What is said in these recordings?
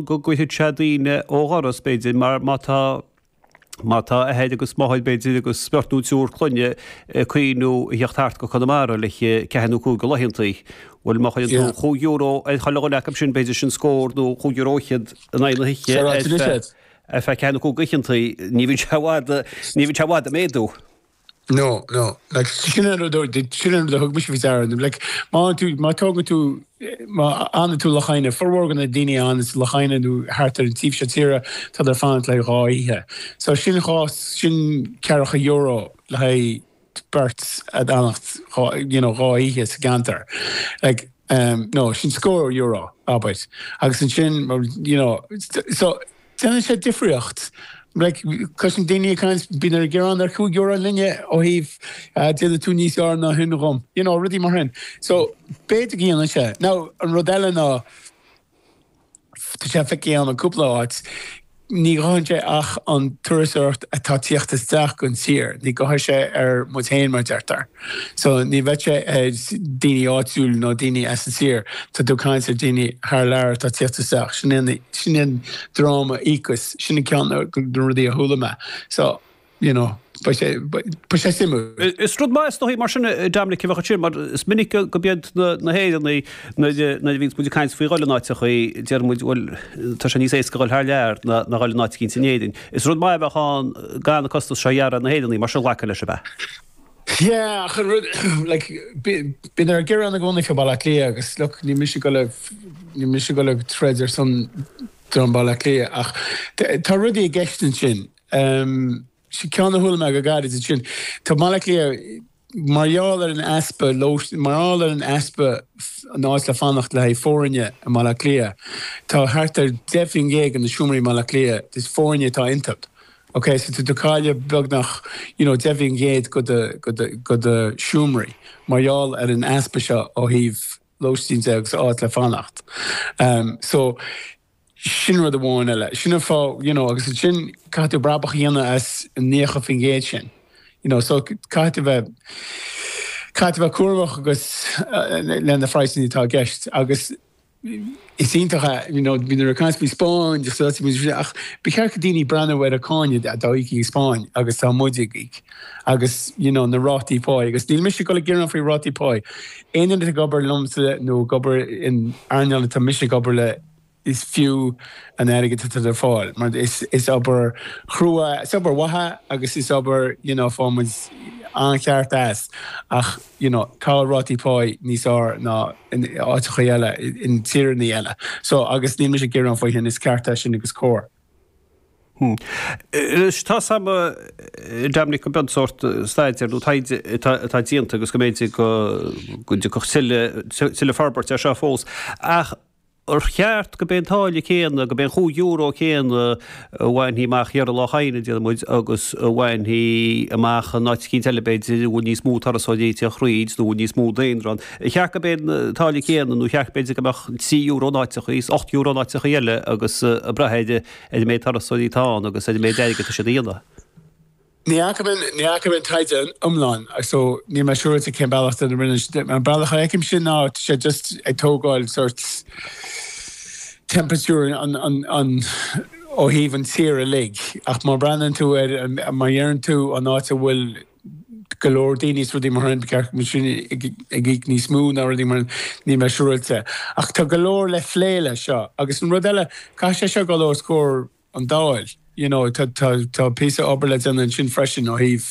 go gcuirfidh sé daoine ó dhoras, b'fhéidir, mar má tá má tá athair agus máthair, b'fhéidir, agus beirt nó triúr clainne ag cuimhniú a theacht thart go Conamara le ceathair nó cúig go laethanta, bhuel, má chuireann tú chúig euro ar chuile dhuine acu sin, b'fhéidir, sin scór nó chúig euro fhichead in aghaidh na hoíche ar feadh ceathair nó cúig oícheanta, ní bhíonn sé i bhfad, ní bhíonn sé i bhfad ag méadú. No, no, like, sin an rud a, sin an rud a thug mise faoi deara, nó, like, má fhanann tú, má tógann tú, má fhanann tú le haghaidh oíche, formhór de na daoine a fhanann le haghaidh oíche nó thart ar an taobh seo tíre, tá tú ag fanacht le haghaidh dhá oíche. So sin dhá, sin ceathracha euro le haghaidh beirt ag fanacht dhá, you know, dhá oíche sa gceantar. Like, um, no, sin scór euro, abair. Agus ansin, you know, so, Déanann sé difríocht. Cloisim daoine ag caint, bíonn siad ag gearán ar chúig euro an duine ó thaobh déanann tú níos fhearr ná shin dhom. You know, rudaí mar shin. So, b'fhéidir go dhéanann sé. Now, an rud eile ná, tá sé feicthe agam i gcúpla áit, ní chuireann sé ach an turasóireacht atá tíocht isteach gon tír, ní chuireann sé ar muid féin, mar a deirtear. So ní bheidh sé ar daoine áitiúil nó daoine as an tír. Tá tú ag caint ar daoine thar lear atá tíocht isteach. Sin é, sin é an dream a íocfas. Sin an ceann de na rudaí a chuala mé. So, you know, beidh sé, beidh sé suimiúil. Is rud maith is dóigh mar sin, Dominic, a bheadh ansin mar is minic go mbíonn na hÉireannaigh, nuair a bhíonns muid ag caint faoi dhul in áiteacha, deir muid, bhuel, tá sé níos éasca dul thar lear ná dhul in áit eicínt in Éirinn. Is rud maith a bheadh ann gan na costas seo a ghearradh ar na hÉireannaigh mar sin ghlacadh leis a bheadh. Yeah, ach like bíonn siad ag gearán i gcónaí fé Baile Átha Cliath agus look, níl mise ag goil, níl mise ag goil ag troid ar son dream Baile Átha Cliath ach tá rudaí i gceist ansin. Sea, ceann a chuala mé go gairid ansin, tá Baile Átha Cliath mar gheall ar an easpa, mar gheall ar an easpa an áit le fanacht le haghaidh foirne i mBaile Átha Cliath, tá thart ar 10% de na seomraí i mBaile Átha Cliath, is foirne atá iontu, OK, so tá tú ag cailleadh beagnach, you know, deich faoin gcéad go do, go do, go do seomraí mar gheall ar an easpa seo ó thaobh lóistín de agus áit le fanacht. Ehm, so sin rud amháin eile. Sin an fáth, you know, agus ansin caithfidh tú brabach a dhéanamh as an naocha faoin gcéad sin. You know, so caithfidh tú bheith, caithfidh tú bheith cúramach agus eh, leis na praghsanna atá i gceist agus, Is iontach a, you know, bíonn siad ag caint faoin Spáinn agus áit a bhfuil sé ach ba cheart go dhaoine breathnú ar an méid cánach atá á íoc sa Spáinn agus tá muid ag íoc agus, you know, na rátaí páí agus níl mise ag goil ag gearán faoi rátaí páí. Aon duine ag obair liomsa nó ag obair in earnáil atá mise ag obair le is fiú an airgead atá tú ag fáil mar is is obair chrua, is obair mhaith agus is obair, you know, faigheann muid an-cheart as ach. you know, go bhfuil rátaí pái níos fhearr ná in áiteacha eile, in tíreannaí eile. So, agus níl mise ag gearán faoi sin, is ceart é sin agus cóir. Anois, tá sé maith, Dominic, go mbeadh an sórt staidéir nó taighde atá déanta agus go mb'fhéidir go dtiocfadh tuilleadh forbairt air seo fós. Ach ar cheart go mbeidh an táille céanna, go mbeidh an chúig euro céanna a bhainfidh amach in Iorras Aithneach, déarfaidh muid, agus a bhainfidh amach in áit eicínt eile, b'fhéidir, a bhfuil níos mó turasóirí ag teacht thríd nó a bhfuil níos mó daonra ann. Ar cheart go mbeidh an táille céanna nó ar cheart, b'fhéidir, go mbeadh trí euro in áiteacha is ocht euro in áiteacha eile agus ag brath ar an méid turasóirí atá ann agus ar an méid airgid atá siad a dhéanamh? Ní fhaca mé an taighde iomlán so níl mé siúráilte cén bealach a rinne siad é. An bealach a fheicim sin ná tá siad just ag tógáil sort temperature an ó thaobh an tír uilig. Ach má bhreathnaíonn tú ar an, má deireann tú an áit a bhfuil go leor daoine is rudaí mar sin, ceart go mbeidh sin ag íoc níos mó ná rudaí mar sin, níl mé siúráilte. Ach tá go leor le plé leis seo. Agus an rud eile, caithfidh sé seo dul os comhair. an Dáil. You know tá tá tá píosa obair le déanamh ansin freisin ó thaobh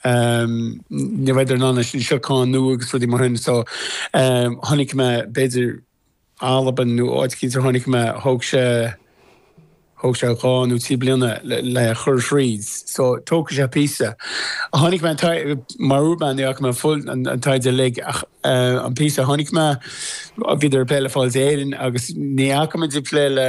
ehm ní bheidh idir an ann sin siocán nó agus rudaí mar sin so ehm chonaic mé b'fhéidir Albain nó áit eicínt chonaic mé thóg sé thóg sé dhá nó trí bliana le le chur thríd so tógfaidh sé píosa. Chonaic mé tá mar Ruben ní fhaca mé full an an taighde uilig ach eh an píosa a chonaic mé bhíodar ag plé le Fáilte Éireann agus ní fhaca mé de plé le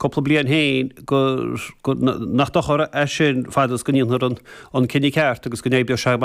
cúpla bliain féin gur, nach dochar é sin fad is go ndéanfar an cinneadh ceart agus go n-oibreoidh sé amach.